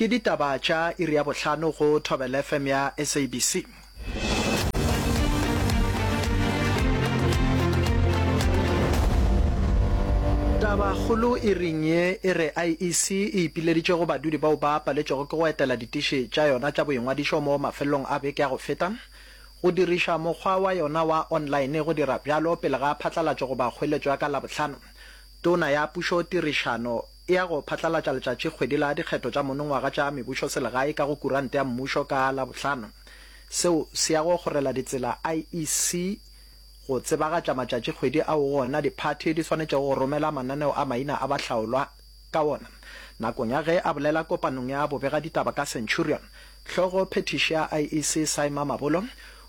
Ke ditaba tša iri ya bohlano go Thobela FM ya SABC. Tabakgolo iring ye e re IEC e ipileditše go badudi bao ba paletšwego ke go etela ditiši tša yona tša boingwadišo mo mafelelong a beke ya go feta go diriša mokgwa wa yona wa online go dira bjalo pele ga phatlalatšo goba kgoeletšo ya ka Labohlano. Tona ya Pušo, Tirišano e ya go phatlalatša letšatšikgwedi la dikgetho tša monongwaga tša mebušoselegae ka go kurante ya mmušo ka Labohlano. Seo se ya go kgorela ditsela IEC go tsebagatša matšatšikgwedi ao go ona diphathi di swanetšego go romela mananeo a maina a bahlaolwa ka wona. Nakong ya ge a bolela kopanong ya bobegaditaba ka Centurion, hlogo phethiši ya IEC Saima Mabolo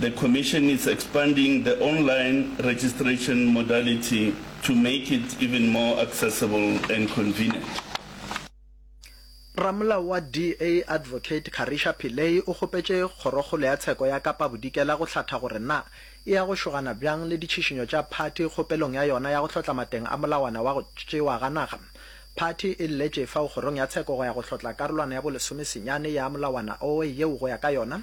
The Commission is expanding the online registration modality to make it even more accessible and convenient. Ramolao wa DA Advocate Carisha Pillay o kgopetše Kgorokgolo ya Tsheko ya Kapa Bodikela go hlatha gore na e ya go šogana bjang le ditšhišinyo tša phathi kgopelong ya yona ya go hlotla mateng a molawana wa go tšewa ga naga. Phathi e lletše fao Kgorong ya Tsheko go ya go hlotla karolwana ya bo lesomesenyane ya molawana oe yeo go ya ka yona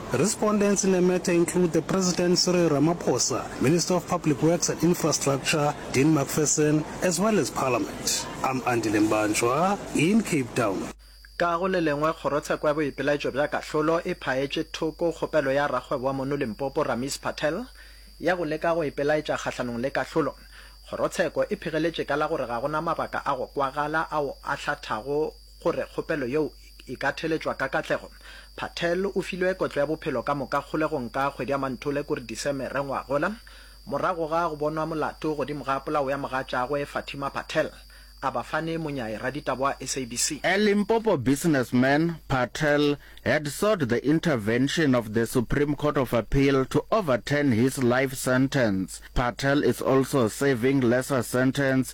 Respondents in the matter include the President Cyril Ramaphosa, Minister of Public Works and Infrastructure Dean McPherson as well as Parliament. I'm Andile Mbanjwa in Cape Town. Ka go le lengwe, kgorotsheko ya boipelaetšo bja kahlolo e phaetše thoko kgopelo ya rakgwebo wa mono Limpopo Ramees Patel ya go leka go ipelaetša kgahlanong le kahlolo. Kgorotsheko e phegeletše ka la gore ga go na mabaka a go kwagala ao a hlathago gore kgopelo yeo e ka theletšwa ka katlego, Patel o filwe kotlo ya bophelo ka moka kgolegong ka kgwedi ya Manthole kuri Disemere ngwagola, morago ga go bonwa molato godimo ga polao ya mogatšaagwe Fatima Patel, a ba fane monyayi raditaba wa SABC. A Limpopo businessman, Patel had sought the intervention of the Supreme Court of Appeal to overturn his life sentence. Patel is also serving lesser sentence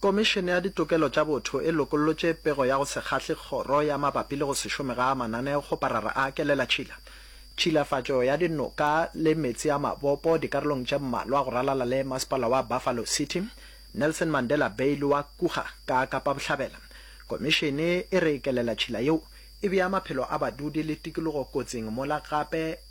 Komišene ya Ditokelo tša Botho e lokollotše pego ya go se kgahle kgoro ya mabapi le go se šome ga mananeo go parara a kelela tšhila. Tšhilafatšo ya dinoka le meetse a mabopo dikarolong tše mmalwa go ralala le Masepala wa Buffalo City, Nelson Mandela Bay le wa Kruger ka Kapa Bohlabela. Komišene e re kelela tšhila yeo e bea maphelo a badudi le tikologo kotsing mola gape,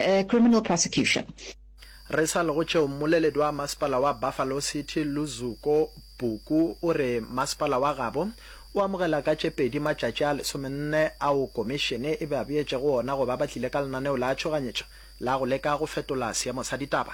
A criminal prosecution. Re sa le go tšeo, mmoleledi wa masepala wa Buffalo City, Luzuko Buku, o re masepala wa gabo o amogela ka tše pedi matšatši a lesomenne ao komišene e ba beetšego ona go ba ba tlile ka lenaneo la tšhoganyetšo la go leka go fetola seemo sa ditaba.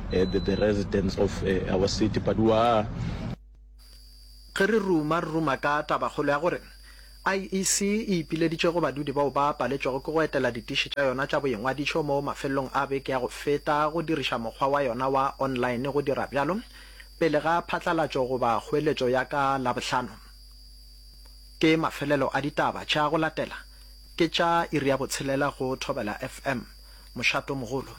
the residents of our city but we are Ge re ruma, re ruma ka tabakgolo ya gore IEC e ipileditše go badudi bao ba paletšwego ke go etela ditiši tša yona tša boingwadišo mo mafelelong a beke ya go feta go diriša mokgwa wa yona wa online go dira bjalo pele ga phatlalatšo goba kgoeletšo ya ka Labohlano. Ke mafelelo a ditaba tša go latela ke tša iri ya botshelela go Thobela FM. Mošato mogolo.